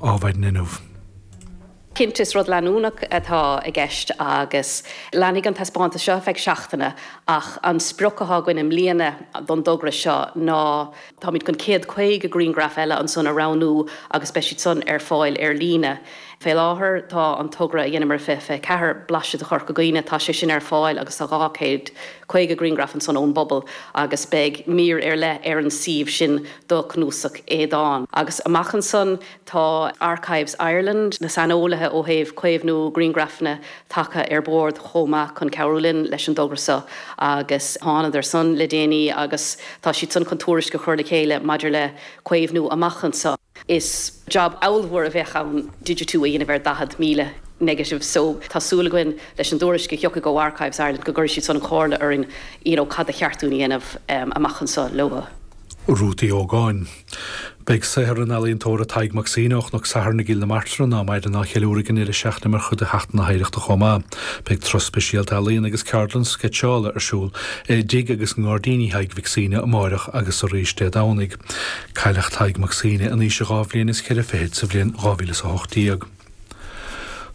ábhair d'fhuinneamh. Cinnte, is rud leanúnach atá i gceist agus leanfaidh an taispeántas seo ar feadh seachtaine ach an sprioc atá againn i mbliana don dtogra seo ná táimid chun céad caoga griangraf eile ansan a roghnú agus beidh siad san ar fáil ar líne. Fé láthair tá an togra a dheineamar i 2024, Blaiseadh de Chorca Dhuibhne, tá sé sin ar fáil agus tá dhá céad caoga griangraf ansan ón bpobal agus beidh mír ar leith ar an suíomh sin do Chnuasach Aodáin. Agus amach ansan tá Archives Ireland, na saineolaithe ó thaobh caomhnú grianghrafanna, tagtha ar bord chomh maith chun cabhrú linn leis an dtogra so agus thánadar san le déanaí agus tá siad san chun tuairisc a chur le chéile maidir le caomhnú amach anso. Is job ábhalmhór a bheadh ann digitiú a dhéanamh ar 40,000 negative so tá súil againn leis an dtuairisc a thiocfaidh ó Archives Ireland go gcuirfidh siad san an chomhairle orainn you know cad ba cheart dúinn a dhéanamh amach anso leo. Ruth Uí Ógáin. Beidh saothar an ealaíontóra Tadhg Mac Suibhne ó Chnoc Sathairn i gCill na Martra ná maireann á cheiliúradh ag an deireadh seachtaine mar chuid de Sheachtain na hOidhreachta chomh maith. Beidh turas speisialta ealaíon agus ceardlann sceitseála ar siúl i dtigh agus i ngairdíní Thaidhg Mhic Suibhne amáireach agus arís Dé Domhnaigh. Cailleadh Tadhg Mac Suibhne in aois a dhá bhliain is cheithre fichid sa bhliain 2018.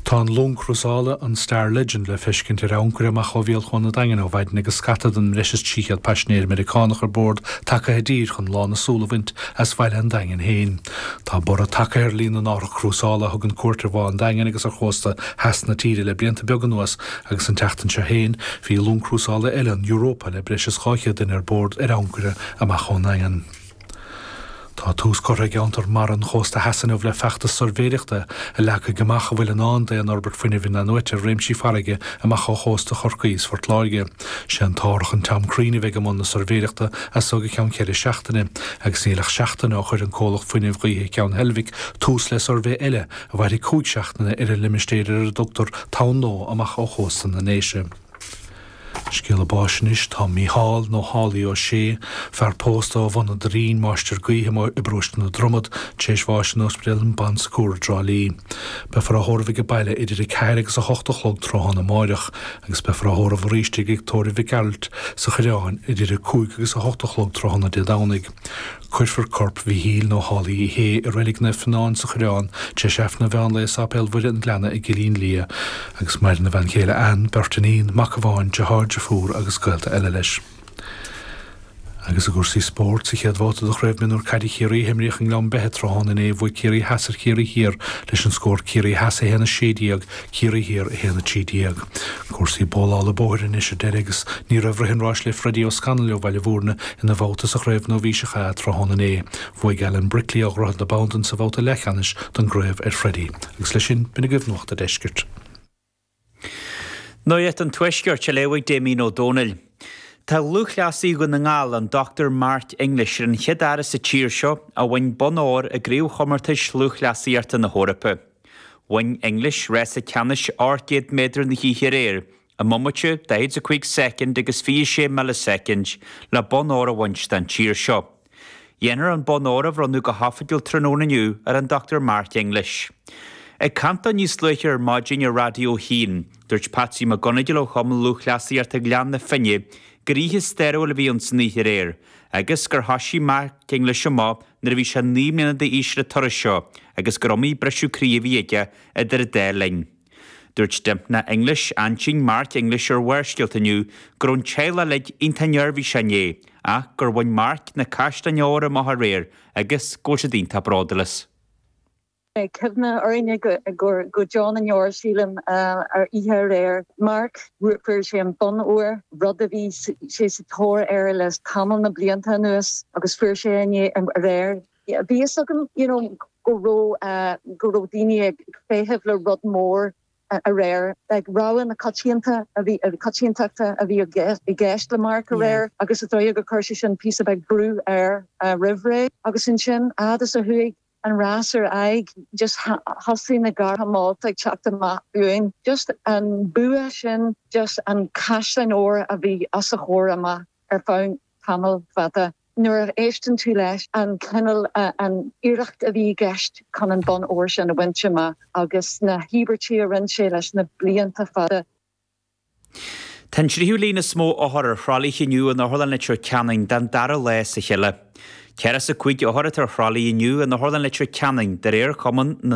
Tá an long crúsála, an Star Legend, le feiscint ar ancaire amach ó bhéal Chuan an Daingin ó mhaidin agus scata den mbreis is 300 paisinéir Meiriceánach ar bord tagtha i dtír chun lán a súl a bhaint as bhaile an Daingin féin. Tá borradh tagtha ar líon na n-árthach crúsála a thugann cuairt ar Bhá an Daingin agus ar chósta theas na tíre le blianta beaga anuas agus an tseachtain seo féin bhí long crúsála eile, an Europa, le breis is 200 duine ar bord, ar ancaire amach ón nDaingean. Tá tús curtha i gCeantar Mara an Chósta Theas inniu le feachtas suirbhéireachta a leagfaidh amach a bhfuil i ndán d'aon fhorbairt fuinnimh inathnuaite i réimsí farraige amach ó chósta Chorcaí is Phort Láirge. Sé an t-árthach an Tom Crean a bheidh i mbun na suirbhéireachta as so go ceann ceithre seachtaine agus níl ach seachtain ó chuir an comhlacht fuinnimh gaoithe Ceann Heilbhic tús le suirbhé eile a mhairfidh cúig seachtaine ar an limistéir ar a dtugtar Tonn Nua amach ó chósta na nDéise. Scéala báis anois, tá Mícheál, nó Haulie, Ó Sé, fear pósta ó Bhun an Doirín, Máistir Gaoithe amuigh i bparóiste na Dromad, tar éis bháis in Ospidéal an Bon Secours i dTrá Lí. Beifear á thórramh ag an baile idir 4 agus 8 a chlog tráthnóna amáireach, agus beifear á thórramh arís i dTigh Tórraimh Mhic Gearailt sa Choireán idir 5 agus 8 a chlog tráthnóna Dé Domhnaigh. Cuirfear corp Mhichíl, nó Haulie, Uí Shé i Reilig Naomh Fíonáin sa Choireán, tar éis Aifreann an mheán lae i Sáipéal Mhuire an Ghleanna i gCillín Liath, agus maireann a bhean chéile Anne, beirt iníon, mac amháin, deartháir, deirfiúr agus gaolta eile leis. Agus i gcúrsaí spóirt, sa chéad bhabhta de Chraobh Mionúr Caide Chiarraí a himríodh i nGleann Beithe tráthnóna inné, bhuaigh Ciarraí Theas ar Chiarraí Thiar leis an scór Ciarraí Theas 1 16, Chiarraí Thiar 1, 13. Cúrsaí bólála bóthair anois ar deireadh agus ní raibh rith an ráis le Freddie Ó Scanaill ó Bhaile Bhúirne ina bhabhta sa Chraobh Nóibhíseach A tráthnóna inné. Bhuaigh Alan Brickley ó Dhroichead na Bandan sa bhabhta leathcheannais don gcraobh ar Freddie. Agus leis sin, b'in agaibh Nuacht an Deiscirt. Nuacht an Tuaiscirt, á léamh ag Damien Ó Dónaill. Tá lúthchleasaí Dhún na nGall, an Dr Mark English, ar an chéad fhear as an tír seo a bhain bonn óir i gCraobhchomórtais Lúthchleasaíochta na hEorpa. Bhain English rása ceannais ocht gcéad méadar na hoíche aréir, i mbomaite, 45 soicind agus 26 milleasoicind, le bonn óir a bhaint den tír seo. Dhéanfar an bonn óir a bhronnadh go hoifigiúil tráthnóna inniu ar an Dr Mark English. Ag caint dó níos luaithe ar maidin ar Raidió 1, dúirt Patsy McGonagle ó Chumann Lúthchleasaíochta Ghleann na Finne gur oíche stairiúil a bhí ann san oíche aréir agus gur thoisigh Mark English amach nuair a bhí sé naoi mbliana d'aois ar an turas seo agus gur iomaí briseadh croí a bhí aige idir an dá linn. Dúirt Dympna English, aintín Mark English ar Bharrscéalta inniu go raibh an teaghlach uilig iontach neirbhíseach inné ach gur bhain Mark na caisleáin óir amach aréir agus go bhfuil siad iontach bródúil as. Beidh cuimhne orainne go deo na ndeor, sílim, ar oíche aréir Mark. Fuair sé an bonn óir, rud a bhí sé sa tóir air le tamall na blianta anuas, agus fuair sé inné, aréir. Bhí a fhios againn you know go raibh, go raibh daoine ag feitheamh le rud mór aréir. Rogha na coitianta, coitiantachta a bhí i gceist le Mark aréir agus is dóigh gur chuir sé sin píosa beag brú air roimh ré. Agus ansin, a fhad is a chuaigh. an rás ar aghaidh just thosaigh na gártha molta ag teacht amach uainn just an bua sin just an caisleáin óir a bhí os a chomhair amach ar feadh tamall fada nuair a éisteann tú leis an cineál an iarracht a bhí i gceist chun an bonn óir sin a bhaint amach agus na híobairtí a rinne sé leis na blianta fada. Tá an tríú líon is mó othar ar thralaithe inniu in Otharlann Leitir Ceanainn den dara lá as a chéile. Ceathracha is a cúig othar atá ar thralaithe inniu in Otharlann Leitir Ceanainn de réir Cumann na.